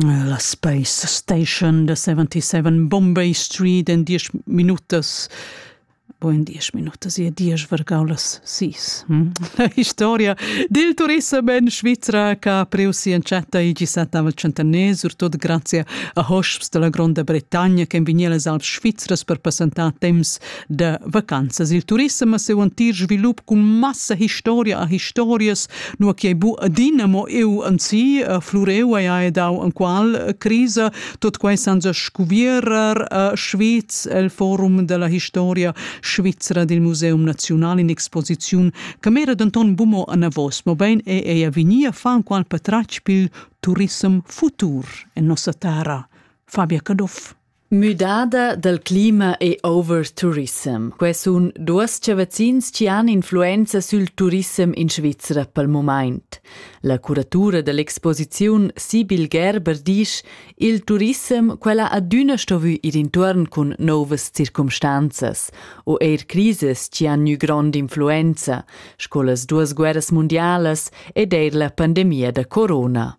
La Space Station da 77 Bombay Street en 10 minutas bo in 10 minutas e 10 vargaulas sis. Hm? La historia del turism en Svizra che ha priu si entschatta il 17 centenario, surtut grazie a hosps della Gronda Bretagna che in vignir les Alps Svizras per passentar temps da vacanzas. Il turissem ha seu antir svilup cun massa historia a historias, nu che bu adina mo eu anzi uh, flureu haja dau an qual uh, crisa, tot quai san sa scuvierer a uh, Schweiz el forum della historia svizzera del Museum Nazional in exposiziun che mera denton bumo an avos, ma bein e ella vinia fan qual patratg pil turissem futur en nossa terra. Fabia Caduff. Müdada dal clima e overtourism. Quai sun duos chavazzins chi han influenza sül turissem in Svizra pel mumaint. La curatura da l'exposiziun Sibyl Gerber disch: Il turissem quella adüna stovü ir intuorn cun nouvas circumstanzas o eir crisas chi han gnü grond'influenza, sco las duas guerras mundialas ed eir la pandemia da corona.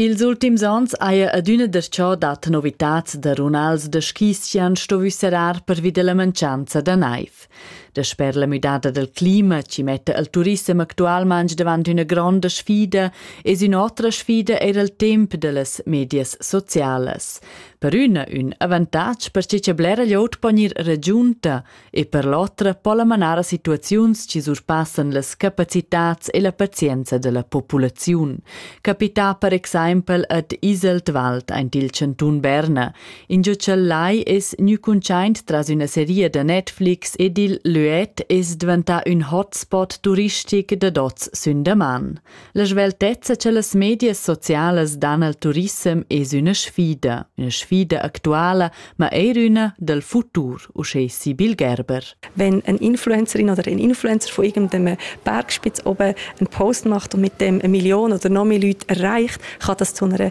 Ils ultims ans haja adüna darcho dat novitats da runals da skis chi han stuvü serrar pervi da la mancanza da naiv. Dasper la müdada dal clima chi metta il turissem actualmaing davant üna gronda sfida es ün'otra sfida eir il temp da las medias socialas. Per üna ün avantatg perche cha blera glioud po gnir ragiunta e per l'otra po la manar a situaziuns che surpassan las capacitads e la pazienza della populaziun. Capita per exempel ad Iseltwald aint il cantun Berna, ingio ch'el lai es gnü cuntschaint tras üna seria da Netflix ed il Luet es dvantà ün hotspot turistic dad hoz sün daman. La sveltezza che las medias socialas dan al turissem es üna sfida, üna sfida actuala, ma eir üna dal futur, uschè Sibyl Gerber. Wenn eine Influencerin oder ein Influencer von irgendeinem Bergspitz oben einen Post macht und mit dem eine Million oder noch mehr Leute erreicht, kann das zu einer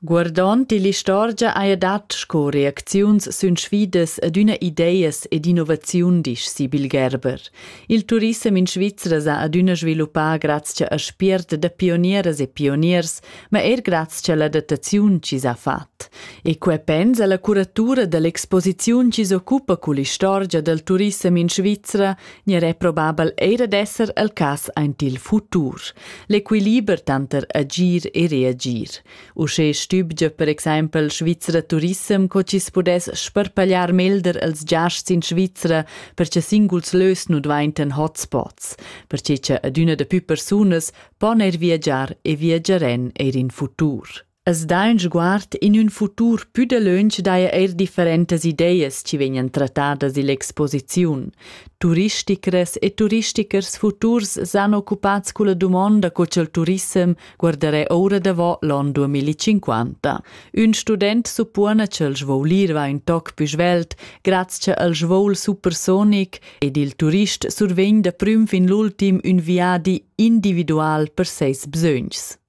Guardond ill'istorgia haja dat sco reacziuns sün sfidas ad üna ideas ed innovaziun, disch Sibyl Gerber. Il turissem in Svizra s'ha adüna sviluppà grazcha a spiert da pionieras e pioniers, ma eir grazcha a l'adattaziun chi s'ha fat. E que pensa la curatura da l'exposiziun chi s'occupa cull'istorgia dal turissem in Svizra Gnir è probabel eir ad esser el cas aint il futur. L'equiliber tanter agir e reagir. Uschè stübgia per exaimpel Svizra Turissem co chi's pudess sparpagliar melder els giasts in Svizra per che singuls lös nu dvaintan hotspots, perche cha adüna da pü persunas pon eir viagiar e viagiarèn eir in futur. As dà ün sguard in ün futur pü dalöntsch daja eir differentas ideas chi vegnan trattadas ill'exposiziun. Turisticras e turistichers futurs s'han occupats culla dumonda co cha'l turissem guardarà oura davo l'on 2050. Ün student suppona cha'l svoulir va ün toc pü svelt graz cha el svouel supersonic ed il turist survegn da prüm fin l'ultim ün viadi individual per seis bsögns.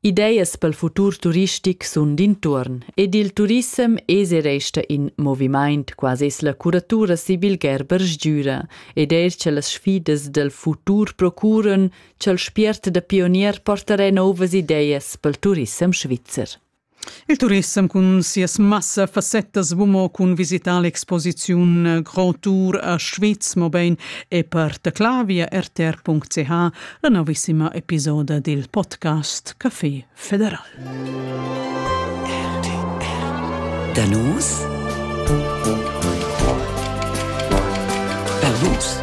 Ideas pel futur turistic sun d'intuorn ed il turissem es e resta in movimaint, quasi es la curatura Sibyl Gerber sgüra ed eir cha las sfidas dal futur procuran cha'l spiert da pionier portarà nouvas ideas pel turissem svizzer. Il turissem cun sias massa fassettas bumo cun visitar l'exposiziun Grand Tour a Schwyz mobein e per teclar via rtr.ch la novissima episoda dil podcast Café Federal. Danus Per vus